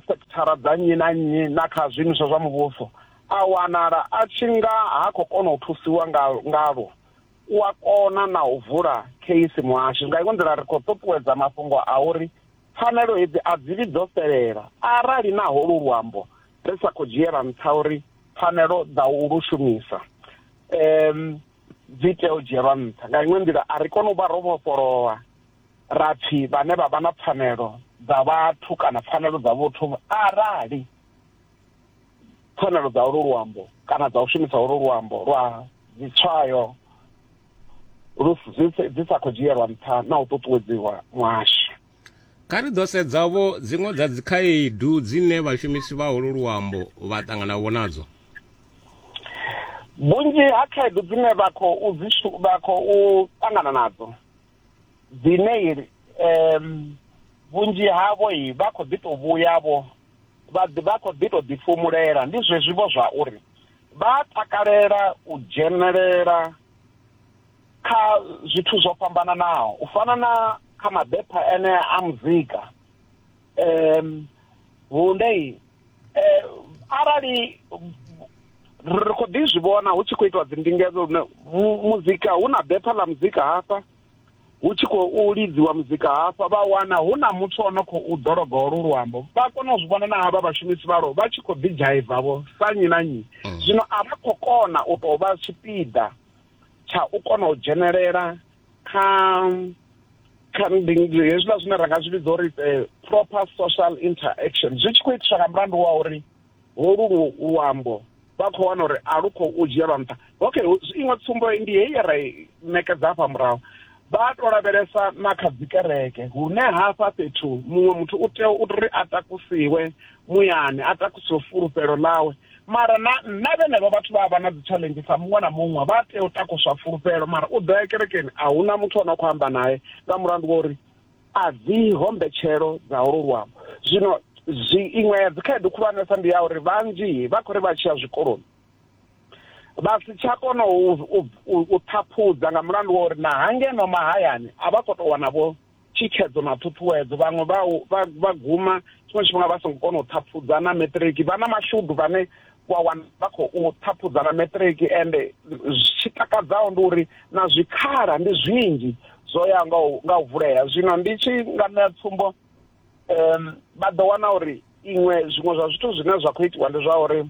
sekithara dza nnyi na nnyi na kha zwiimiswa zwa muvhuso a wanala a tshi nga ha khou kona u thusiwa ngalwo u a kona na u vula kheisi muhasho nga iṅwe nḓila ri khou ṱuṱuwedza mafhungo a uri pfanelo hedzi a dzi vhi dzo fhelela arali na holu luambo ri sa khou dzhiela nṱha uri pfanelo dza u lu shumisa um dzi tea u dzhielwa nṱha nga iṅwe nḓila a ri kone u vha ro vhofholowa ra pfi vhane vha vha na pfanelo dza vhathu kana pfanelo dza vhuthu arali pfanelo dza ulu luambo kana dza u shumisa ulu luambo lwa dzitswayo dzi sa khou dzhielwa nṱha na u ṱuṱuwedziwa muhasho kha ri ḓo sedzavho dziṅwe dza dzikhaedu dzine vhashumisi vha ulu luambo vha ṱanganavho nadzo vhunzhi ha khaedu dzine vha khou vha khou ṱangana nadzo dzine um vhunzhi havho vha khou ḓi tou vhuyavho vha khou ḓi tou ḓifhumulela ndi zwezwivho zwa uri vha takalela u dzhenelela kha zwithu zwo fhambananaho u fana na kha mabepha ene a muzika um vhundei eh, arali ri khou ḓi zwi vhona hu tshi khou itiwa dzindingedzo lune muzika hu na bepha ḽa muzika hafha hu tshi khou lidziwa muzika hafha vha wana hu na muthu o no khou ḓologa olu luambo vha kona u zwi vhona na havha vhashumisi vhalo vha tshi khou ḓi dzhaivavho sa nyi na nyi mm. zwino a vha khou kona u tou vha tshipiḓa tsha u kona u dzhenelela kha kha hezwiḽa zwine ra nga zwi vhidza uri eh, proper social interaction zwi tshi khou itiswa nga mulandu wa uri holu luambo vha khou wana uri a lu khou u dzhielwa nṱha okay iṅwe tsumbo ndi heyi ye ra ṋekedza hafha murahu vha to lavhelesa na kha dzikereke hune hafha fhethu muṅwe muthu u tea uri a takusiwe muyani a takusiwe fulufhelo ḽawe mara na nna vhenevho vhathu vha vha na dzi challenge sa muṅwe na muṅwe vha tea u takuswa fulufhelo mara u ḓo ya kerekeni a huna muthu ono khou amba naye nga mulandu wa uri a dzi hombetshelo dza holo luambo zwino zwi iṅwe ya dzikhaedu khulwanesa ndi ya uri vhanzhi vha khou ri vha tshiya zwikoloni vha si tsha kona u ṱhaphudza nga mulandu wa uri na hangeno mahayani a vha khou tou wanavho thikhedzo na ṱhuṱhuwedzo vhaṅwe vha vha vha guma tshiṅwe tshifhinga vha songo kona u ṱhaphudza na matric vha na mashudu vhane wa wana vha khou ṱhaphudza na matric ende tshi takadzaho ndi uri na zwikhala ndi zwinzhi zwo ya nga u nga u vulea zwino ndi tshi nga ṋea tsumbo um vha ḓo wana uri iṅwe zwiṅwe zwa zwithu zwine zwa khou itiwa ndi zwa uri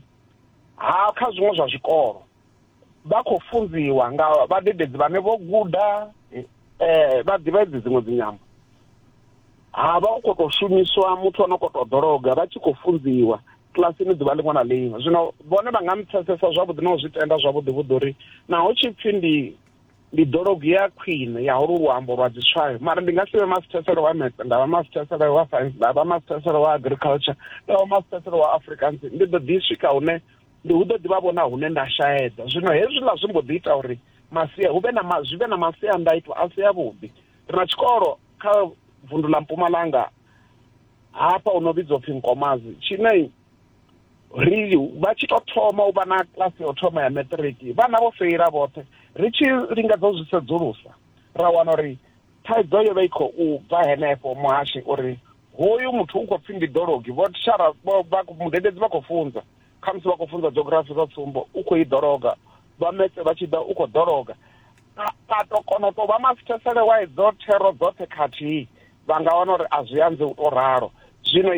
ha kha zwiṅwe zwa zwikolo vha khou funziwa nga vhadededzi vhane vho guda um vha ḓivha edzi dziṅwe dzinyambo ha vha u khou tou shumiswa muthu ono khou tou ḓologa vha tshi khou funziwa kilasini ḓuvha ḽiṅwe na ḽiṅwe zwino vhone vha nga mpfesesa zwavhuḓi na u zwi tenda zwavhuḓi vhuḓi uri naho tshi pfhi ndi ndi ḓologo ya khwine ya holu luambo lwa dziswayo mara ndi nga si vhe masithesele wa metse nda vha masithesele wa science nda vha masithesele wa agriculture nda vha masithesele wa africans ndi ḓo ḓi swika hune ndi hu ḓo ḓi vha vhona hune nda shaedza zwino hezwiḽa zwi mbo ḓi ita uri masia hu vhe na ma, zwi vhe na masiandaitwa a si avhuḓi ri na tshikolo kha vundu ḽa mpumalanga hafha u no vhidzwa upfhi nkomazi tshine ri vha tshi to thoma u vha na klasi ya u thoma ya matriki vhana vho feila vhoṱhe ri tshi lingedza u zwi sedzulusa ra wana uri thaidzo yo vha i khou bva henefho muhashi uri hoyu muthu u khou pfi ndi ḓologi vhotshara mudededzi vha khou funza khamusi vha khou funza geografi sa tsumbo u khou i ḓologa vha metse vha tshi ḓa u khou ḓologa a to kona u tou vha masithesele wa idzo thero dzoṱhe khathihi vha nga wana uri a zwi anze u tou ralo zwino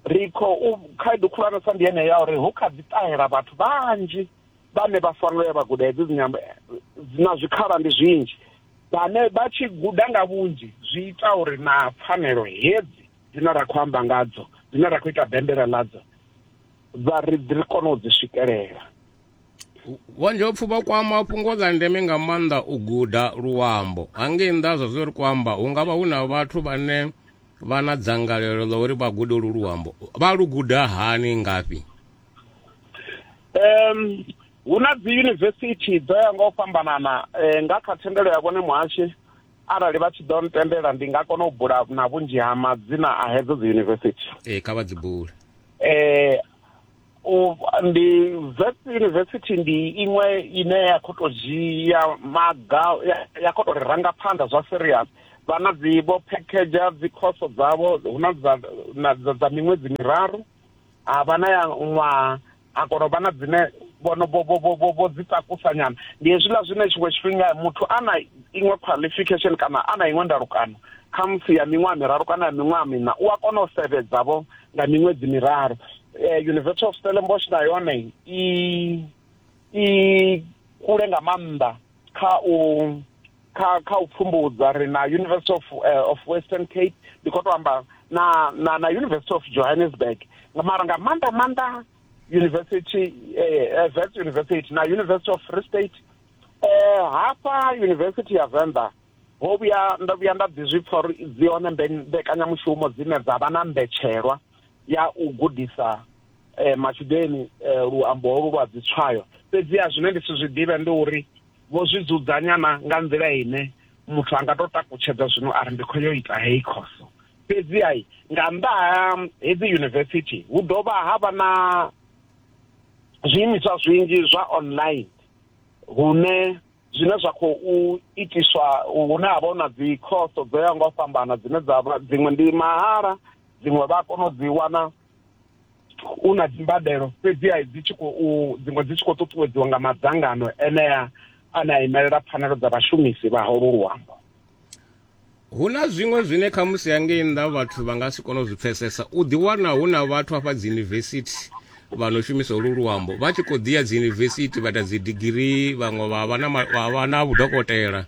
ri khou khaedu khulwanesa ndi yeneyo ya uri hu kha ḓi ṱahela vhathu vhanzhi vhane vha fanela ya vha guda hedzi dzinyambo na zwikhala ndi zwinzhi vhane vha tshi guda nga vhunzhi zwi ita uri na pfanelo hedzi dzine ra khou amba ngadzo dzine ra khou ita bembela ḽadzo vha ri ri kone u dzi swikelela vhonjopfu vha kwama fhungo ḽa ndeme nga maanḓa u guda luambo hangei nnḓa zwa zwo ri khou amba hu nga vha hu na vhathu vhane vha na dzangalelo ḽa uri vha gude lu luambo vha lu guda hani ngafhi um hu na dzi yunivesithi dzo ya nga u fhambanana um nga kha thendelo ya vhone muhashi arali vha tshi ḓo ntendela ndi nga kona u bula na vhunzhi ha madzina a hedzo dzi yunivesithi ee kha vha dzi bule eh u ndi vets university ndi iṅwe ine ya khou tou dzhia maga ya khou tou ri ranga phanḓa zwa serious vha na dzi vho package dzi khoso dzavho hu na dza dza miṅwedzi miraru a vha na ya ṅwaha a kona u vha na dzine vhono vho dzi takusa nyana ndi hezwiḽa zwine tshiṅwe tshifhinga muthu a na iṅwe qualification kana a na iṅwe ndalukano kha musi ya miṅwaha miraru kana ya miṅwaha miṋa u a kona u sevhedza vho nga miṅwedzi miraru eh, university of stellenbosch na yone i i kule nga maanḓa kha u kha kha u pfumbudza ri na university of, uh, of western cape ndi khou to amba na, na, na university of johannesburg mara nga maanḓa maanḓa university eh, vets university na university of free state eh, hafha university ya venḓa ho vhuya ndo vhuya nda ḓi zwi pfa uri dzi hone mbekanyamushumo dzine dza vha na mbetshelwa ya u gudisa eh, matshudeni eh, luambo holu lwa dzitswayo fhedziha zwine ndi si zwi ḓivhe ndi uri Vho zwi dzudzanya na nga nḓila ine muthu a nga tou takutshedza zwino a ri ndi khou yo ita heyi khoso. Fhedzi-ha nga nnḓa ha hedzi yunivesithi hu dovha ha vha na zwiimiswa zwinzhi zwa online hune zwine zwa khou itiswa hune ha vha hu na dzi khoso dzo yaho nga u fhambana dzine dza vha dziṅwe ndi mahala dziṅwe vha a kona u dzi wana u na dzimbadelo fhedziha dzi tshi khou dziṅwe dzi tshi khou ṱuṱuwedziwa nga madzangano enea ane a imelela pfanelo dza vhashumisi vha holwo luambo hu na zwiṅwe zwine kha musi hangei nnḓa vhathu vha nga si kone u zwi pfesesa u ḓiwana hu na vhathu hafha dziyunivesithi vha no shumisa holu luambo vha tshi khou ḓiya dziyunivesithi vha ita dzidigirii vhaṅwe vha vha na vha na vhudokotela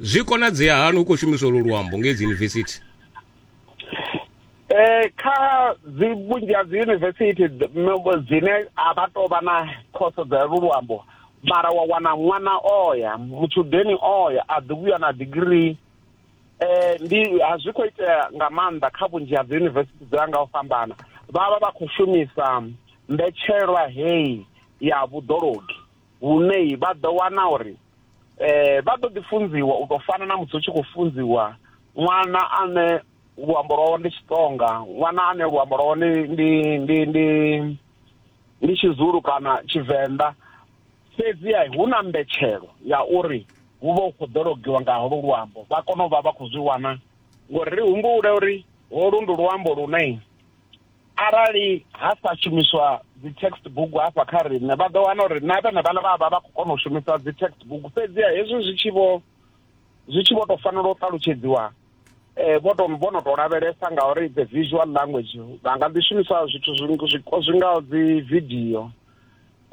zwi konadzea hani hu khou shumisa holu luambo ngei dziyunivesithi eh kha dzi vhunzhi ha dzi university dzine a vha tou vha na khoso dza lu luambo mara wa wana ṅwana oya mutshudeni oya a ḓi vhuya na degree eh ndi a zwi khou itea nga maanḓa kha vhunzhi ha dzi university dza nga u fhambana vha vha vha khou shumisa mbetshelwa heyi ya vhuḓologi hune vha ḓo wana uri eh vha ḓo ḓi funziwa u tou fana na musi u tshi khou funziwa ṅwana ane luambo lwawe ndi Xitsonga ṅwana ane luambo lwawe ndi ndi ndi ndi ndi Tshizulu kana Tshivenḓa fhedzi ya hu na mbetshelo ya uri hu vha hu khou ḓo logiwa nga holo luambo vha kone u vha vha khou zwi wana ngori ri humbule uri holu ndi luambo lune arali ha sa shumiswa dzi text book hafha kha riṋe vha ḓo wana uri na vhene vhana vha vha vha khou kona u shumisa dzi text book fhedziha hezwi zwi tshi vho zwi tshi vho tou fanela u ṱalutshedziwa um vho to vho no tou lavhelesa ngauri the visual language vha nga ḓi shumisa zwithu zwi ngaho dzi vidio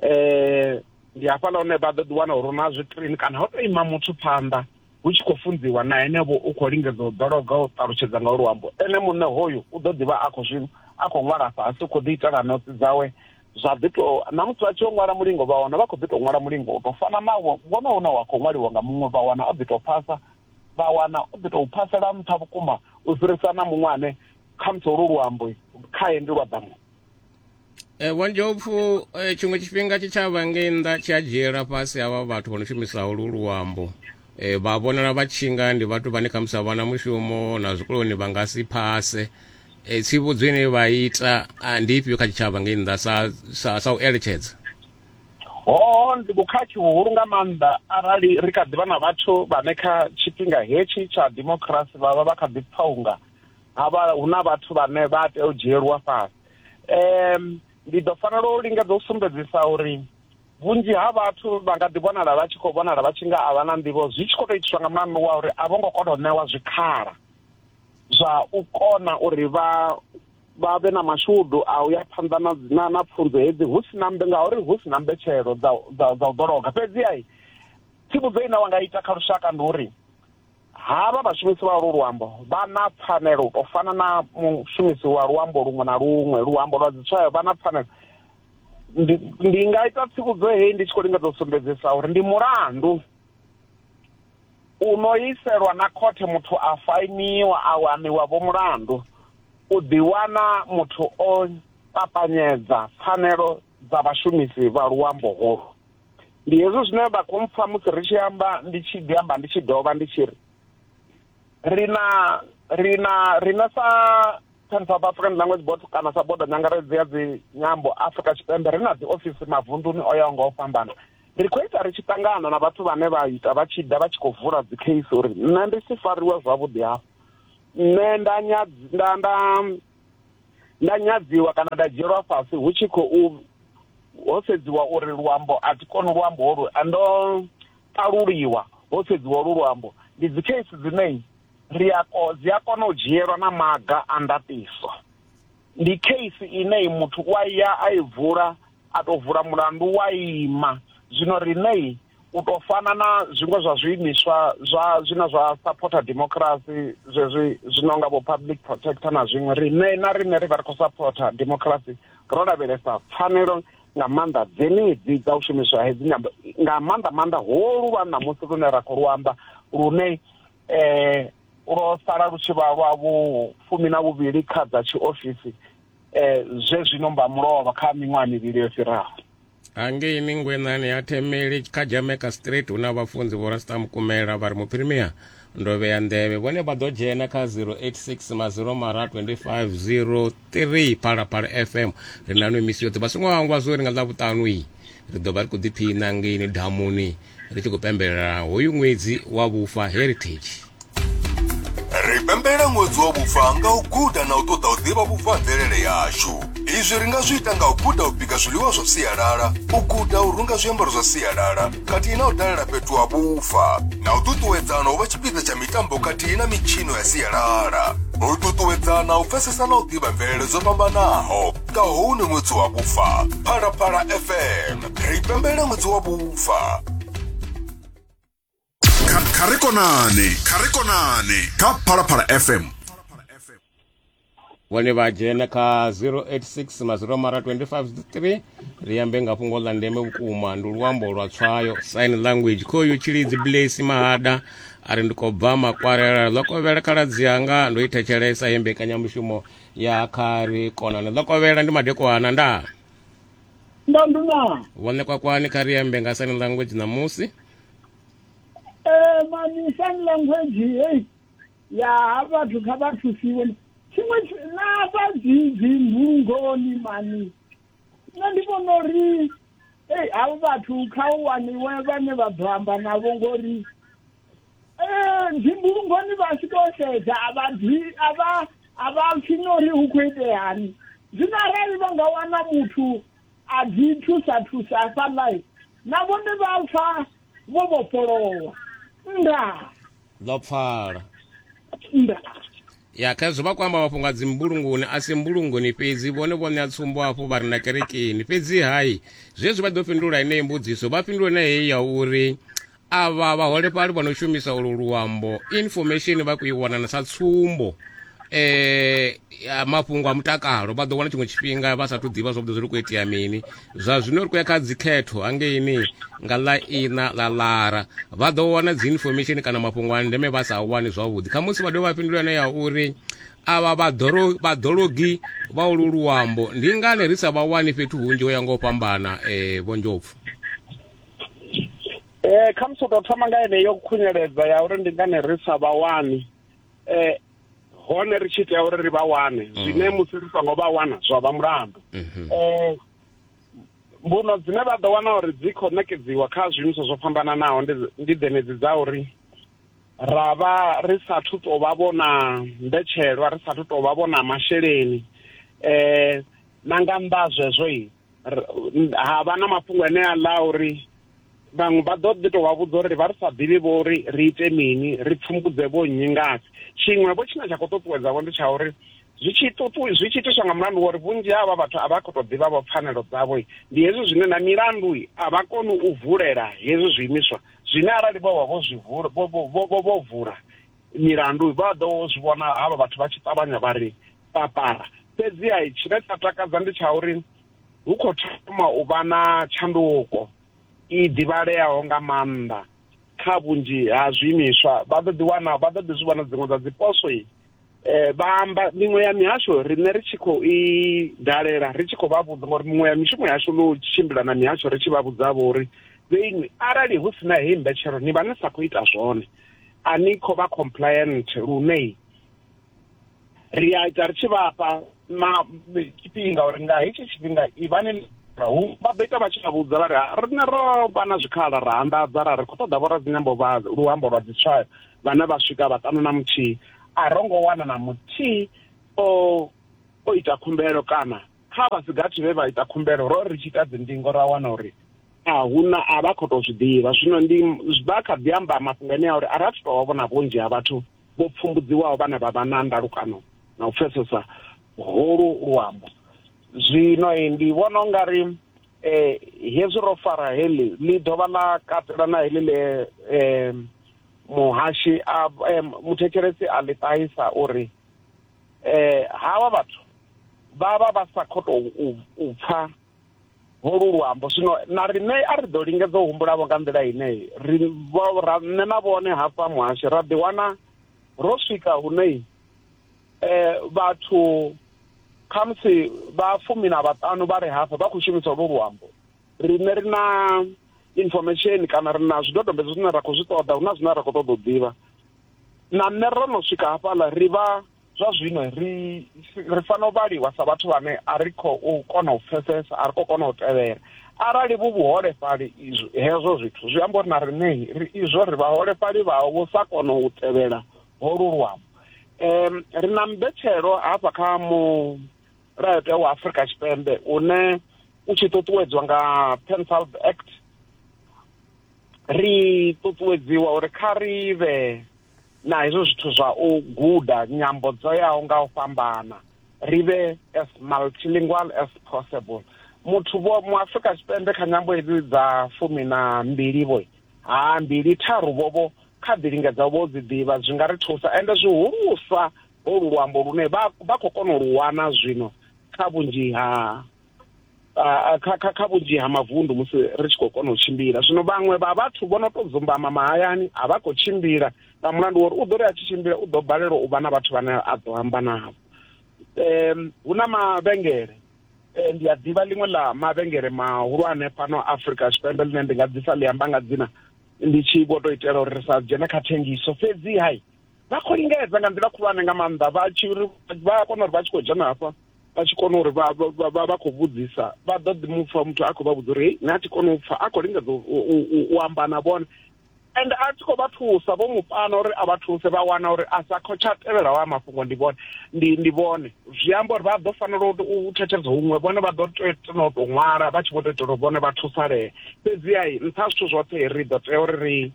um ndi hafhaḽa hune vha ḓo ḓi wana uri na zwi screen kana ho tou ima muthu phanḓa hu tshi khou funziwa na henevho u khou lingedza u ḓologa u ṱalutshedza nga luambo ene muṋe hoyu u ḓo ḓivha a khou zwi a khou ṅwala fhasi u khou ḓi itela notsi dzawe zwa ḓi to na musi vha tshi yo ṅwala mulingo vha wana vha khou ḓi to ṅwala mulingo u to fana na wono une wa khou ṅwaliwa nga muṅwe vha wana o ḓi to phasa vha wana o ḓi to phasela nṱha vhukuma u fhirisa na muṅwe ane khamusi holu luambo khae ndi lwa ḓamu Eh, wa ndjopfu eh, tshiṅwe tshifhinga tshitshavha ngei nnḓa tshi a dzhiela fhasi havha vhathu vho no shumisa holu luambo eh, vha vhonala vha tshinga ndi vhathu vhane khamusi a vhana mushumo na zwikoloni vha nga si phase eh, tsivhudzo ine vha ita ah, ndi ifhio kha tshitshavha ngei nnḓa sa, sa, sa u eletshedza hoho ndi vhukhakhi vhuhulu nga maanḓa arali ri kha ḓivha na vhathu vhane kha tshifhinga hetshi tsha democracy vha vha vha kha ḓi pfaunga havha hu na vhathu vhane vha tea u dzhielwa fhasi um ndi ḓo fanela u linga ḓo sumbedzisa uri vhunzhi ha vhathu vha nga ḓi vhonala vha tshi khou vhonala vha tshi nga a vha na nḓivho zwi tshi khou tou itiswa nga mulandu wa uri a vho ngo kona u ṋewa zwikhala zwa u kona uri vha vha vhe na mashudu a u ya phanḓa na na na pfunzo hedzi hu si na mbe ngauri hu si na mbetshelo dza dza dza u ḓologa fhedzi ai tsivhudzo ine wa nga ita kha lushaka ndi uri Havha vhashumisi vha olwo luambo vha na pfanelo u tou fana na mushumisi wa luambo luṅwe na luṅwe, luambo lwa dzitswayo vha na pfanelo. Ndi, ndi nga ita tsivhudzo heyi ndi tshi khou lingedza u sumbedzisa uri ndi mulandu u no iselwa na khothe muthu a fainiwa a waniwa vho mulandu u ḓiwana muthu o papanyedza pfanelo dza vhashumisi vha luambo holu ndi hezwo zwine vha khou mpfa musi ri tshi amba ndi tshi ḓi amba ndi tshi dovha ndi tshi ri ri na ri na ri na sa Pan South African Language Board kana sa bodo nyangaredzi ya dzi nyambo Afrika Tshipembe ri na dzi ofisi mavunduni o yaho nga u fhambana ri khou ita ri tshi ṱangana na vhathu vhane vha ita vha tshi ḓa vha tshi khou vula dzi case uri nṋe ndi si fariwe zwavhuḓi hafho nṋe nda nda nda nda nyadziwa kana nda dzhielwa fhasi hu tshi khou ho sedziwa uri luambo a thi koni luambo holu ndo ṱaluliwa ho sedziwa lu luambo ndi dzi case dzine ri a ko dzi a kona u dzhielwa na maga a ndaṱiso ndi case ine muthu wa ya a i vula a to vula mulandu wa ima zwino riṋei u tou fana na zwiṅwe zwa zwiimiswa zwa zwine zwa saphotha democracy zwezwi zwi no nga vho public protector na zwiṅwe riṋe na riṋe ri vha ri khou saphotha democracy ro lavhelesa pfanelo nga maanḓa dzenedzi dza u shumiswa hedzi nyambo nga maanḓa maanḓa holu lwa ṋamusi lune ra khou luamba lune um lwo sala lu tshi vha lwa vhu fumi na vhuvhili kha dza tshiofisi um zwe zwino mba mulovha kha miṅwaha mivhili yo fhiraho hangei mingwenani ya themeli kha jamaica street hu na vhafunzi vho rasta mukumela vha ri muphirimia ndo vhea nḓevhe vhone vha ḓo dzhena kha 086 maziro mara 2503 phalaphala fm ri na no misi yoṱhe vha songo hangwa zwo ri nga ḽa vhuṱanu iyi ri ḓo vha ri khou ḓiphiṋa ngeini damuni ri tshi khou pembelela hoyu ṅwedzi wa vhufa heritage ri pembelela ṅwedzi wa vhufa nga u guda na u ṱoḓa u ḓivha vhufa ha mvelele yashu izwi ri nga zwi ita nga u guda u bika zwiḽiwa zwa sialala u guda u runga zwiambaro zwa sialala khathihi na u dalela fhethu ha vhufa na u ṱuṱuwedzana u vha tshipiḓa tsha mitambo khathihi na mitshino ya sialala u ṱuṱuwedzana u pfesesa na u ḓivha mvelele dzo fhambanaho nga hune ṅwedzi wa vhufa phalaphala fm ri pembelela ṅwedzi wa vhufa kha kha ri konane kha ri konane kha phalaphala fm vhone vha dzhena kha 086 maziro mara 253 ri ambe nga fhungo ḽa ndeme vhukuma ndi luambo lwa tswayo sign language khoyu tshilidzi blaise mahada a ri ndi khou bva makwarela ḽo kovhela khaladzi yanga ndo i thetshelesa ye mbekanyamushumo ya kha ri konane ḽo kovhela ndi madekwana ndaa ndandu na wane kwakwani kha ri ambe nga sign language ṋamusi eh mani sign language hey ya vhathu kha vha thusiwe tshiṅwe na vha dzi dzi mbulungoni mani nṋe ndi vhona uri ei havho vhathu kha u waniwe vhane vha ḓo amba navho ngori ee ndi mbulungoni vha tshi to sedza a vha ḓi a vha a vha pfi no ri hu khou iteani zwino arali vha nga wana muthu a ḓi thusa thusa hafhaḽa na vhone vha pfa vho vhofholowa ndaa ḽo pfala ndaa ya kha zwo vha kho amba mafhungo a dzimbulungoni a si mbulungoni fhedzi vhone vho ṋea tsumbo hafhu vha ri na kerekeni fhedzi hai zwezwi vha ḓo fhindula heneyi mbudziso vha fhindula na heyi ya uri avha vhaholefhali vha no shumisa ulu luambo information vha khou i wana na sa tsumbo eh mafhungo a mutakalo vha ḓo wana tshiṅwe tshifhinga vha sathu ḓivha zwavhuḓi zwi khou itea mini zwa zwino ri khou ya kha dzikhetho hangeini nga ḽa ina ḽa lara vha ḓo wana dzi information kana mafhungo a ndeme vha sa wani zwavhuḓi kha musi vha dovha vha fhindula yone ya uri avha vhaḓologi vha ulu luambo ndi ngani ri sa vha wani fhethu hunzhi ho ya nga u fhambana um vho ndjopfu eh kha musi tou thoma nga yeneyo khunyeledza ya uri ndi ngani ri sa vha wani eh hone ri tshi tea uri ri vha wane mm. zwine musi ri songo vha wana zwa vha mulandu mhm. eh mbuno dzine vha ḓo wana uri dzi khou ṋekedziwa kha zwiimiswa zwo fhambananaho ndi dzenedzi dza uri ra vha ri sathu tou vha vhona mbetshelwa ri sathu tou vha vhona masheleni um na nga nnḓa zwezwo i ha vha na mafhungo ane a ḽa uri vhaṅwe vha ḓo ḓi tou vha vhudza uri vha ri sa ḓivhi vho uri ri ite mini ri pfumbudze vho nnyi ngasi tshiṅwe vho tshine tsha khou ṱuṱuwedzavho ndi tsha uri zwi tshi ṱuṱu zwi tshi itiswa nga mulandu wori vhunzhi havha vhathu a vha khou tou ḓivha vho pfanelo dzavho ndi hezwi zwine na milandu a vha koni u vulela hezwi zwiimiswa zwine arali vho vha vho zwi vula vho vho vho vula milandu vha ḓo zwi vhona havha vhathu vha tshi ṱavhanya vha ri papara fhedzi a tshine tsha takadza ndi tsha uri hu khou thoma u vha na tshanduko i ḓivhaleaho nga maanḓa kha vhunzhi ha zwiimiswa vha ḓo ḓiwana vha ḓo ḓi zwi vhona dziṅwe dza dziposo i eh, vha amba miṅwe ya mihasho riṋe ri tshi khou i dalela ri tshi khou vha vhudza ngori miṅwe ya mishumo yashu no tshimbila na mihasho ri tshi vha vhudza vho uri vheinwi arali hu sina heyi mbetshelo ni vha ni sa khou ita zwone a ni khou vha compliant lune ri a ita ri tshi vhafha ma tshifhinga uri nga hetshi tshifhinga ivhani hu vha beta vha tshi vha vhudza vha ri rine ro vha na zwikhala ra anḓadza ra ri khou ṱoḓa vho radzinyambo vha luambo lwa dzitswayo vhane vha swika vhaṱanu na muthihi a ro ngo wana na muthihi o o ita khumbelo kana kha vha si gathi vhe vha ita khumbelo ro ri tshi ita dzindingo ra wana uri a hu na a vha khou tou zwi ḓivha zwino ndi vha kha ḓi amba mafhungo ane a uri a ra thu tou vha vhona vhunzhi ha vhathu vho pfumbudziwaho vhane vha vha na ndalukano na u pfesesa holu luambo zwino ndi vhona ungari um eh, hezwi ro fara heḽi ḽi dovha ḽa katela na heḽi ḽe um muhashi a muthetshelesi a ḽi ṱahisa uri um havha vhathu vha vha vha sa khou tou u pfha holu luambo zwino na riṋe a ri ḓo lingedza u humbulavho nga nḓila ine ri ra nṋe na vhone hafha muhasho ra ḓiwana ro swika hune um eh, vhathu khamusi vha fumi na vhaṱanu vha re hafha vha khou shumisa holu luambo riṋe ri na information kana ri na zwidodombedzwa zwine ra khou zwi ṱoḓa hu na zwine ra khou ṱoḓa u ḓivha na nṋe ro no swika hafhaḽa ri vha zwa zwino ri ri fanela u vhaliwa sa vhathu vhane a ri khou kona u pfesesa a ri khou kona u tevhela arali vhu vhuholefhali izwo hezwo zwithu zwi amba uri na riṋe ri izwo ri vhaholefhali vhaho vho sa kona u tevhela holu luambo um ri na mbetshelo hafha kha mulayotewa wa afurika tshipembe une u tshi ṱuṱuwedzwa nga penfald act ri ṱuṱuwedziwa uri kha ri vhe na hezwo zwithu zwa u guda nyambo dzo yaho nga u fhambana ri vhe as multilingual as possible muthu vho mu Afrika Tshipembe kha nyambo hedzi dza fumi na mbili vho ha mbili tharu vho vho kha ḓi lingedza vho dzi ḓivha zwi nga ri thusa ende zwihulusa holu luambo lune vha vha khou kona u lu wana zwino kha vhunzhi ha ah, kha kha kha vhunzhi ha mavundu musi ri tshi khou kona u tshimbila zwino vhaṅwe vha vhathu vho no to dzumbama mahayani a vha khou tshimbila nga mulandu wori u ḓo ri a tshi tshimbila u ḓo balelwa u vha na vhathu vhane a ḓo amba navho um hu na mavhengele eh, ndi a ḓivha ḽiṅwe ḽa mavhengele mahulwane fhano afrika tshipembe ḽine ndi nga ḓisa ḽi amba nga dzina ndi tshi vho to itela uri ri sa dzhene kha thengiso fhedzi hai vha khou lingedza nga nḓila khulwane nga maanḓa vha tshi ri vha kona uri vha tshi khou dzhena hafha vha tshi kona uri vha vha- vha- vha khou vhudzisa vha ḓo ḓi mupfa muthu a khou vha vhudza uri hei nṋe a thi koni u pfa a khou lingedza u- u- u- u- u amba na vhone and a tshi khou vha thusa vho mu pana uri a vha thuse vha wana uri a sa khou tsha tevhelaho a mafhungo ndi vhone ndi ndi vhone zwi amba uri vha ḓo fanela u- u thetshelesa huṅwe vhone vha ḓo tea tena u tou ṅwala vha tshi vho tou itela uri vhone vha thusalee fhedziha nṱha ha zwithu zwoṱhe ri ḓo tea uri ri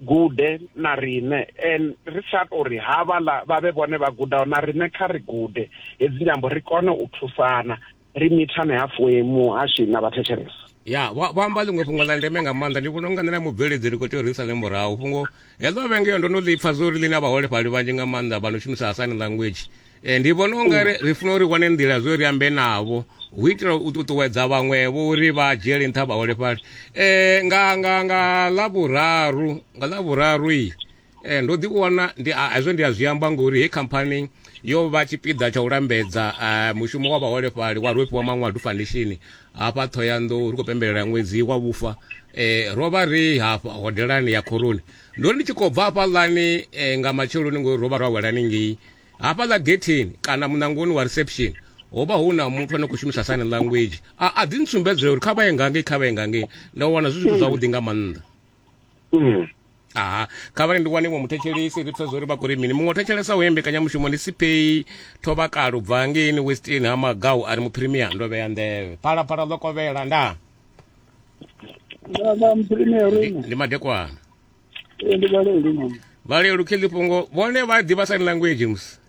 gude na riṋe and ri sa tori ha vhala vha vhe vhone vha gudaho na riṋe kha ri gude hedzi nyambo ri kone u thusana ri mithane ha fuemu hashu na vhathetshelesa ya vha amba ḽiṅwe fhungo ḽa ndeme nga maanḓa ndi vhona unga nṋe na mubveledzi ri khou tea u risa ḽe murahu fhungo heḽo vhenge yo ndo no ḽi pfa zwo ri ḽi na vhaholefhali vhanzhi nga maanḓa vha no shumisa asani language e, ndi vhona unga mm. ri funa uri wane nḓila zwo ri ambe navho hu itela u ṱuṱuwedza vhaṅwevho uri vha dzhiele nṱha vhaholefhali um nga nga nga ḽavhuraru nga ḽavhuraru i um ndo ḓi wana ndi hezwo ndi a zwi amba ngori he khamphani yo vha tshipiḓa tsha u lambedza eh, mushumo wa vhaholefhali wa rwefhiwa maṅwadu foundation hafha ṱhoyanḓou ri khou pembelela ṅwedzi wa vhufa um ro vha ri hafha hodelani ya khoroni ndo ri ndi tshi khou bva hafhaḽani um nga matsheloni ngori ro vha ro awelani ngei Hafhaḽa getheni kana muṋangoni wa reception ho vha hu na muthu ane a khou shumisa sign language, a a ḓi ntsumbedzela uri kha vha ye nga ngei, kha vha ye nga ngei. Ndo wana zwi zwithu zwavhuḓi nga maanḓa. Aha, kha vha ri ndi wane iṅwe muthetshelesi ri pfesesa uri vha khou ri mini. Muṅwe o thetshelesa uyo mbekanyamushumo ndi Sipheyi Thovhakale u bva hangeini Western ha Magau a ri Muphirimiya ndo vhea nḓevhe. Phalaphala ḽo kovhela nda. Nda nda Muphirimiya uri. Ndi madekwana. Ee, ndi vhalelu mama valelu khelipongo vone va diva sign language mus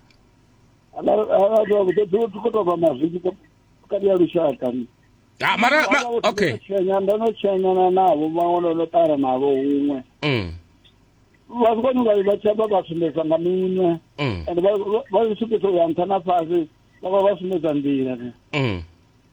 tikotova mazwitshi kati ya lushaka ni ah, mara ma, okay tshenya ndo no tshenyana navo vhaṅwe ndo no ṱara navo huṅwe mm. vha sikoni vha vha tshaba vha sumbedza nga minwe Mm. and vha vha- vha zwi sumbedza u ya nṱha na fhasi vha vha vha sumbedza nḓila ne Mm.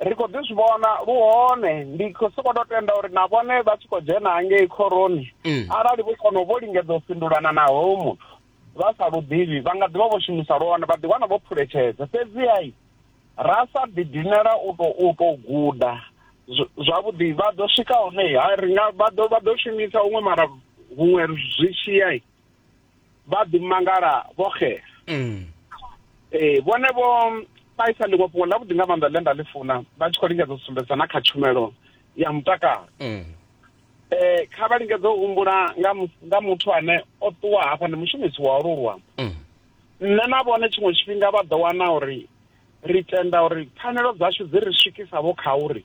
ri khou ḓi zwi vhona lu hone ndi khou sokou tou tenda uri na vhone vha tshi khou dzhena hangei khoroni mm. arali vho kona vho lingedza u fhindulana na hoyo muthu vha sa lu ḓivhi vha nga ḓi vha vho shumisa lwone vha ḓiwana vho phuletshedza fhedzihai ra sa ḓidinela u tou u tou guda zwavhuḓi vha ḓo swika hone ha ri nga vha ḓo vha ḓo shumisa huṅwe mara huṅwe zwi tshiyai vha ḓi mangala vho xela mm. ee eh, vhone vho vha isa ḽiṅwe fhungo ḽavhuḓi nga maanḓa ḽe nda ḽi funa vha tshi khou lingedza u sumbedza na kha tshumelo ya mutakalo mm. eh kha vha lingedze u humbula nga nga muthu ane o ṱuwa hafha ndi mushumisi wa ulu luambo mm. nṋe na vhone tshiṅwe tshifhinga vha ḓo wana uri ri tenda uri pfanelo dzashu dzi ri swikisavho kha uri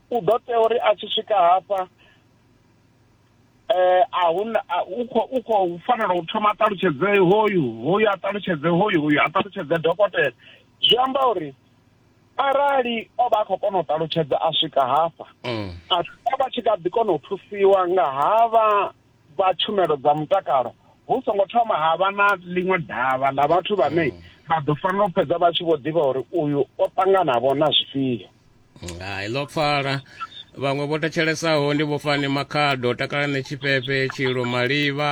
u ḓo tea uri a tshi swika hafha eh a huna u kho u kho fanela u thoma ṱalutshedze hoyu hoyu a ṱalutshedze hoyu hoyu a ṱalutshedze dokotela zwi amba uri arali o vha a khou kona u ṱalutshedza a swika hafha mm. a vha tshi kha ḓi kona u thusiwa nga havha vha tshumelo dza mutakalo hu songo thoma ha vha na ḽiṅwe davha ḽa vhathu vhane mm. vha ḓo fanela u fhedza vha tshi vho ḓivha uri uyu o ṱanganavho na zwifhio hai ḽo pfala vhaṅwe vho thetshelesaho ndi vhofani makhado takalane tshifhefe tshilo malivha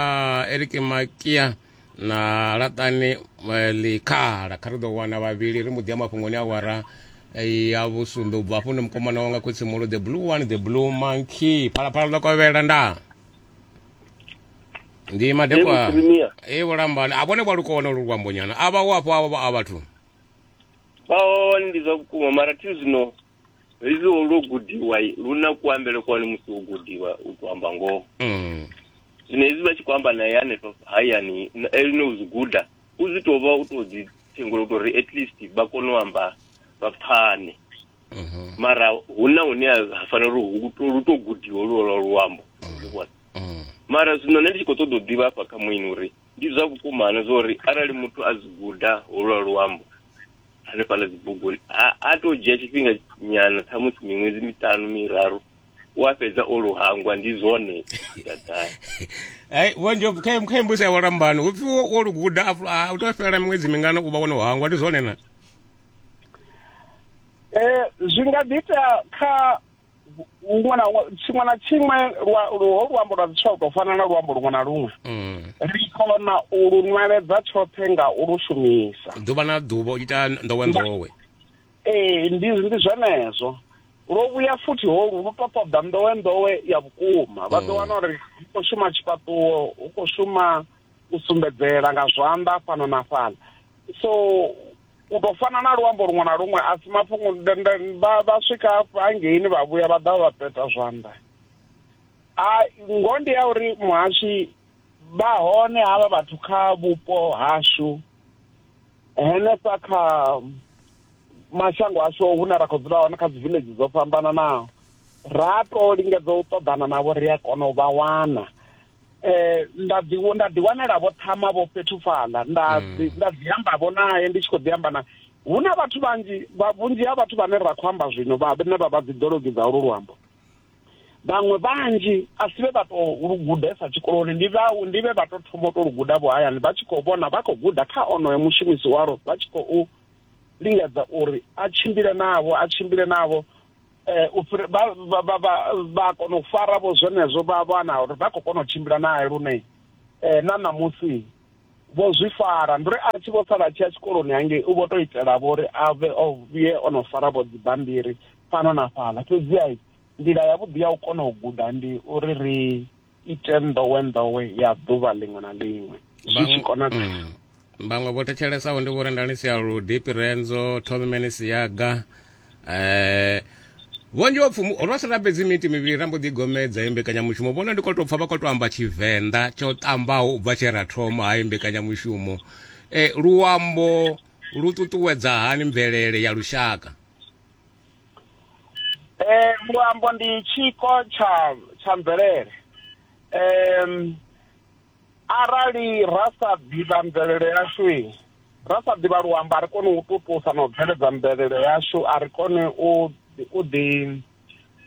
eriki makia na laṱani eh, ḽikhala kha ri ḓo wana vhavhili ri mbo ḓi ya mafhungoni a wara eh, ya vhusumbe u bva hafho ndi mukomana wanga khotsimolo the blue one the blue monkey phalaphala ḽo kovhela nda ndi madekwa Ewu, Premier. e vhulambani a vhone vha lukona lu luambonyana a vha u afho a vha a vhathu Ba hone ndi zwa vhukuma mara thi zwino fhedzi lwo gudiwa lu na kuambele kwani musi wo gudiwa u to amba ngoho mm. zwino hezwi vha tshi khou amba naye hanefha hayani eline u zwi guda u zwi tou vha u tou dzi thengula u tou ri at least vha kone u amba vha pfane mhm. mara hu na hune ha fanela uri lu tou gudiwa lu lwa luambo vhona mm. mara zwino nṋe ndi tshi khou ṱoḓa u ḓivha hafha kha muini uri ndi zwa vhukumana zwa uri arali muthu a zwi guda holwa luambo hanefhala dzibuguni a to dzhia tshifhinga nyana ṱhamusi miṅwedzi miṱanu miraru wa fhedza o luhangwa ndi zwone dadai ai wanje kha kha mbusi ya walambano upfi wo luguda a u to fhela miṅwedzi mingana u vha wono hangwa ndi zwone na eh zwi nga ḓi ita kha huṅwe na huṅwe tshiṅwe na tshiṅwe ho luambo lwa zwiswa u tou fana na luambo luṅwe na luṅwe mm. ri kona u lu nweledza tshoṱhe nga u lu shumisa ḓuvha na ḓuvha u ita ndowe ndowe ee ndi ndi zwenezwo lwo vhuya futhi ho lu to ṱoḓa ndowe ndowe ya vhukuma vha ḓo mm. wana uri hu khou shuma tshifhaṱuwo hu khou shuma u sumbedzela nga zwanḓa fhano na fhala so u ḓo fana na luambo luṅwe na luṅwe a si mafhungo vha swika hangeini vha vhuya vha ḓa vha peta zwanḓa a ngo ndi ya uri muhashi vha hone havha vhathu kha vhupo hashu henefha kha mashango ashu hune ra khou dzula hone kha dzi village dzo fhambananaho ra to lingedza u ṱoḓana navho ri a kona u vha wana eh nda ḓi nda ḓi wanela vho thama vho fhethu fhaḽa nda mm. nda ḓi amba vho nae ndi tshi khou ḓi amba na hu na vhathu vhanzhi vhunzhi ha vhathu vhane ra khou amba zwino vhane vha vha dziḓologi dza ulu luambo vhaṅwe vhanzhi a si vhe vha tou lu gudesa tshikoloni ndi vha ndi vhe vha tou thoma u tou lu guda vho hayani vha tshi khou vhona vha khou guda kha onoyo mushumisi walo vha tshi khou lingedza uri a tshimbile navho a tshimbile navho eh, u fhira vha vha- vha- vha- vha kona u fara vho zwenezwo vha vhana uri vha khou kona u tshimbila naye lune eh, na ṋamusi vho zwi fara ndi uri a tshi vho sala a tshi ya tshikoloni hangei u vho tou itela vho uri a vhe o vhuye o no fara vho dzibammbiri fhano na fhaḽa fhedziha nḓila yavhuḓi ya u kona u guda ndi uri ri ite nḓowenḓowe ya ḓuvha ḽiṅwe na ḽiṅwe zwi tshi konadzea mm. vhaṅwe vho thetshelesa ndi vho rendani sia ludipi renzo thomimene siyaga eh vhunzhi wa pfumu ro si rabedzi miti mivhili rambo ḓi gomedza ye mbekanyamushumo vhona ndi khou tou pfa vha khou tou amba tshivenḓa tsho ṱambaho u bva tshe ra thoma hayi mbekanyamushumo eh luambo lu ṱuṱuwedza hani mvelele ya lushaka eh luambo ndi tshiko tsha tsha mvelele em arali ra sa ḓivha mvelele yashu ra sa ḓivha luambo a ri koni u tutusa na u bveledza mvelele yashu a ri koni u u ḓi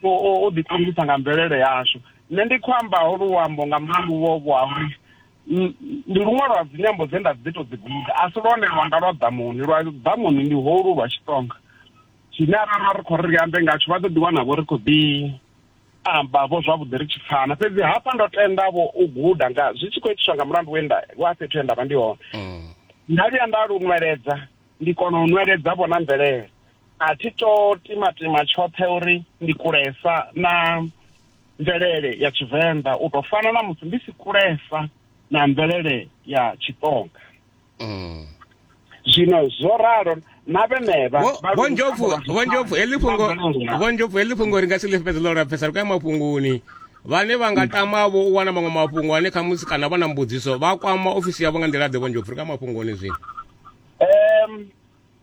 u ḓi ṱongisa nga mvelele yashu nṋe ndi khou ambaho luambo nga mulandu wo vho ha uri ndi luṅwe lwa dzinyambo dze nda ḓi to dzi guda a si lwone lwanga lwa ḓamuni lwa ḓamuni ndi holu lwa tshitsonga tshine arara ri khou ri ri ambe ngatsho vha ḓo ḓi wana vho ri khou ḓi amba vho zwavhuḓi ri tshi pfana fhedzi hafha ndo tenda vho u guda nga zwi tshi khou itiswa nga mulandu we nda wa fhethu he nda vha ndi hone mm. nda vhuya nda lu nweledza ndi kona u nweledza vho na mvelele a thi to timatima tshoṱhe uri ndi kulesa na mvelele ya tshivenḓa u tou fana na musi ndi si kulesa na mvelele ya tshitonga mm. zwino zwo ralo na vhenevha vhonjobvu heḽi fhungo vhonjobvu heḽi fhungo ri nga si ḽi fhedza ḽo lapfesa ri kaya mafhungoni vhane vha nga tama vho u wana maṅwe mafhungo ane khamusi kana vha na mbudziso vha kwama ofisi yavho nga nḓila ḓe vhonjobvu ri kaya mafhungoni zwino um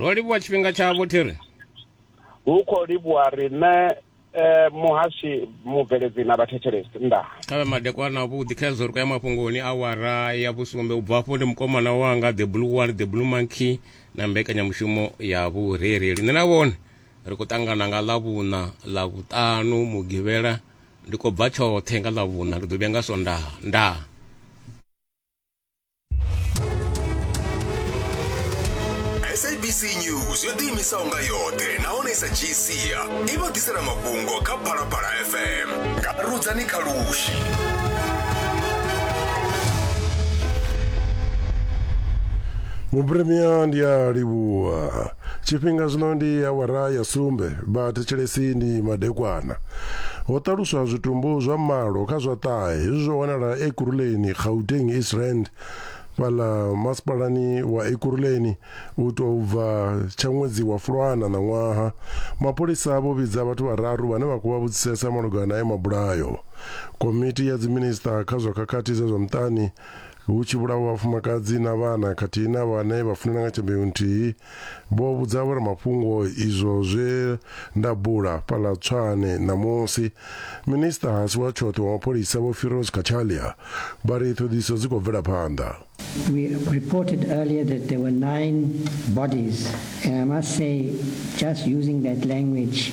ro livhuwa tshifhinga tshavho thiri hu khou livhuwa riṋe eh, muhashi mubveledzi na vhathetshelesi ndaa khavhe madekwana avhuḓi kha hezwo ri khou ya mafhungoni awara ya vhusumbe u bva afho ndi mukomana wanga the blue one the blue monkey na mbekanyamushumo ya vhurereli nṋe na vhone ri khou ṱangana nga ḽavhuṋa ḽa vhuṱanu mugivhela ndi khou bva tshoṱhe nga ḽavhuṋa ndi ḓo vhuya nga sondaha ndaa sabc news yo ḓiimisaho nga yoṱhe nahone i sa dzhii sia i vha ḓisela mafhungo kha phalaphala fm nga rudzani kha lushi vhuphirimiya ndi a livhuwa Tshifhinga zwino ndi awara ya sumbe, vha thetshelesi ndi madekwana. Ho ṱaluswa zwitumbu zwa malo kha zwa ṱahe hezwi zwo wanala Ekurhuleni, Gauteng, East Rand, fhaḽa masipalani wa Ekurhuleni u tou bva tsha ṅwedzi wa Fulwana ṋaṅwaha. Mapholisa vho vhidza vhathu vhararu vhane vha khou vha vhudzisesa malugana na ayo mabulayo. Komiti ya Dziminisiṱa kha zwa Khakhathi dza zwa Muṱani hu tshi vhulawa vhafumakadzi na vhana khathihi na vhane vha funana nga tshimbeu nthihi, vho vhudza vhoramafhungo izwo zwe nda bula fhaḽa Tshwane ṋamusi. Minisiṱa a si wa tshoṱhe wa mapholisa Vho Firoz Cachalia vha ri ṱhoḓisiso dzi khou bvela phanḓa. We reported earlier that there were nine bodies and I must say just using that language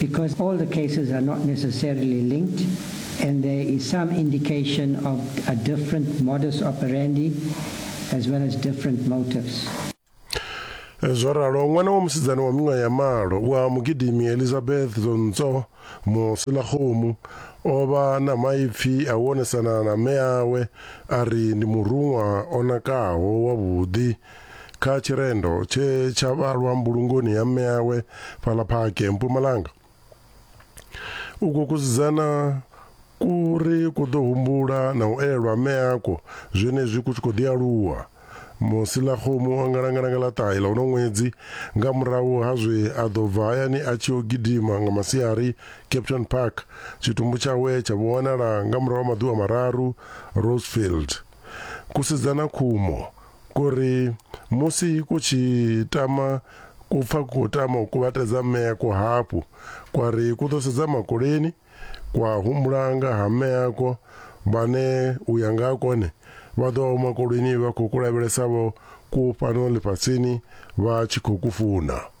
Because all the cases are not necessarily linked, and there is some indication of a different modus operandi as well as different motives. zwo ralo ṅwana wa musidzana wa miṅwaha ya malo wa mugidimi elizabeth zonco musilakgomu o vha na maipfi a u onesana na mme awe a ri ndi muruṅwa o nakaho wavhuḓi kha tshirendo tshe tsha vhalwa mbulungoni ya mme awe fhaḽa phake mpumalanga u khou kusidzana kuri ku ḓo humbula na u elwa mme ako zwenezwi ku tshi khou ḓi aluwa musi ḽa khomu o ngalangala nga ḽa ṱahe ḽa uno ṅwedzi nga murahu ha zwe a ḓo bva hayani a tshi o gidima nga masiari capton park tshitumbu tshawe tsha vho wanala nga murahu ha maḓuvha mararu rosefield kusidzana khumo Kuri musi ku tshi tama ku pfa ku tama u kuvhatedza meako hafhu, kwa ri ku ḓo sedza makoleni, kwa humbula nga ha meako vhane u ya nga ha kone vha ḓo vha vho makoleni vha khou ku lavhelesa vho ku fhano ḽifhasini vha tshi khou ku funa.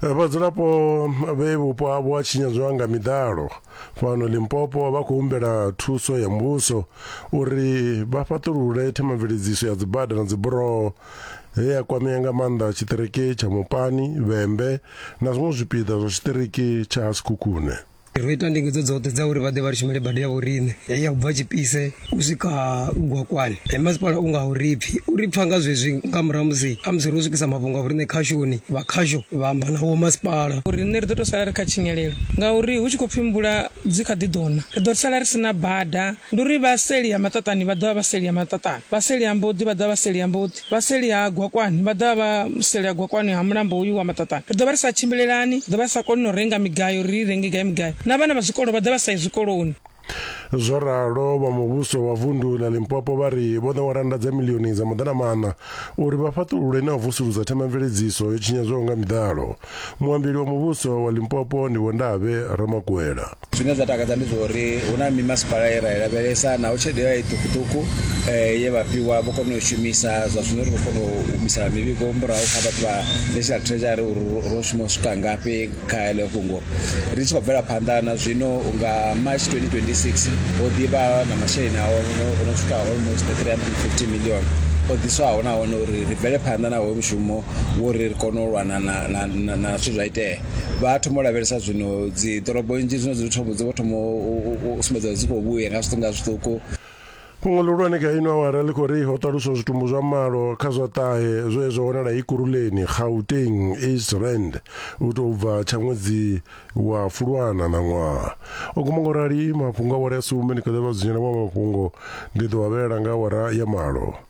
Eh, vhadzulapo vhe vhupo havho ha tshinyadzwa nga miḓalo fhano limpopo vha khou humbela thuso ya muvhuso uri vha fhaṱulule themamveledziso ya dzibada na dziburoho he ya kwamea nga maanḓa tshiṱiriki tsha mupani vhembe na zwiṅwe zwipiḓa zwa tshiṱiriki tsha sikhukhune Ro ita ndingedzo dzoṱhe dza uri vha ḓe vha ri shumele bada ya vhoriṋe heyi ya u bva tshipise u swika gwakwani e masipala u nga ho ri pfhi u ri pfha nga zwezwi nga murahu musi a musi ro swikisa mafhungo a vhoriṋe khashoni vha khasho vha amba na wo masipala uri riṋe ri ḓo tou sala ri kha tshinyalelo ngauri hu tshi khou pfhi mvula dzi kha ḓi ḓo na ri ḓo sala ri si na bada ndi uri vha seli ya maṱaṱani vha ḓovha vha seli ya maṱaṱani vha seli ya mboḓi vha ḓovha vha seli ya mboḓi Vha seli ha Gwakwani vha ḓo vha vha seli ha Gwakwani ha mulambo uyu wa Maṱaṱane. Ri ḓo vha ri sa tshimbilelani, ri ḓo vha ri sa koni na u renga migayo uri ri i renge gai migayo, na vhana vha zwikolo vha ḓo vha sa yi zwikoloni. Zwo ralo, vha muvhuso wa vundu ḽa Limpopo vha ri vho ṋewa rannda dza miḽioni dza maḓanamaṋa uri vha fhaṱulule na u vusuludza themamveledziso yo tshinyadzwaho nga miḓalo. Muambeli wa muvhuso wa Limpopo ndi Vho Ndavhe Ramakwela. zwine zwa takadza ndi zwauri hu na mimasipala ye ra i lavhelesa naho tshelede ya i ṱukuṱuku um ye vha fhiwa vho kona u shumisa zwa zwino ri khou kona u humisela mivhigo murahu kha vhathu vha national treasury uri ro shuma u swika ngafhi kha heḽo fhungo ri tshi khou bvela phanḓa na zwino nga march 2026 ho ḓivha na masheleni ao o no swika almost 350 million o ḓiswaho nahone uri ri bvele phanḓa na hoyo mushumo wo uri ri kone u lwana na zwithu zwa itea vha thoma u lavhelesa zwino dzi ḓorobo nnzhi zwino dzi thoma dzi vho thoma u sumbedza dzi khou vhuya nga zwiṱuku nga zwiṱuku Fhungo ḽihulwane kha ino awara ḽi khou ri ho ṱaluswa zwitumbu zwa malo kha zwa ṱahe zwe zwa wanala Ikuruleni, Gauteng, East Rand u tou bva tsha ṅwedzi wa Fulwana na ṅwaha. O guma ngo rali mafhungo awara ya sumbe ni kha ḓa vha dzunyela wa mafhungo ndi ḓo vha vhelela nga awara ya malo.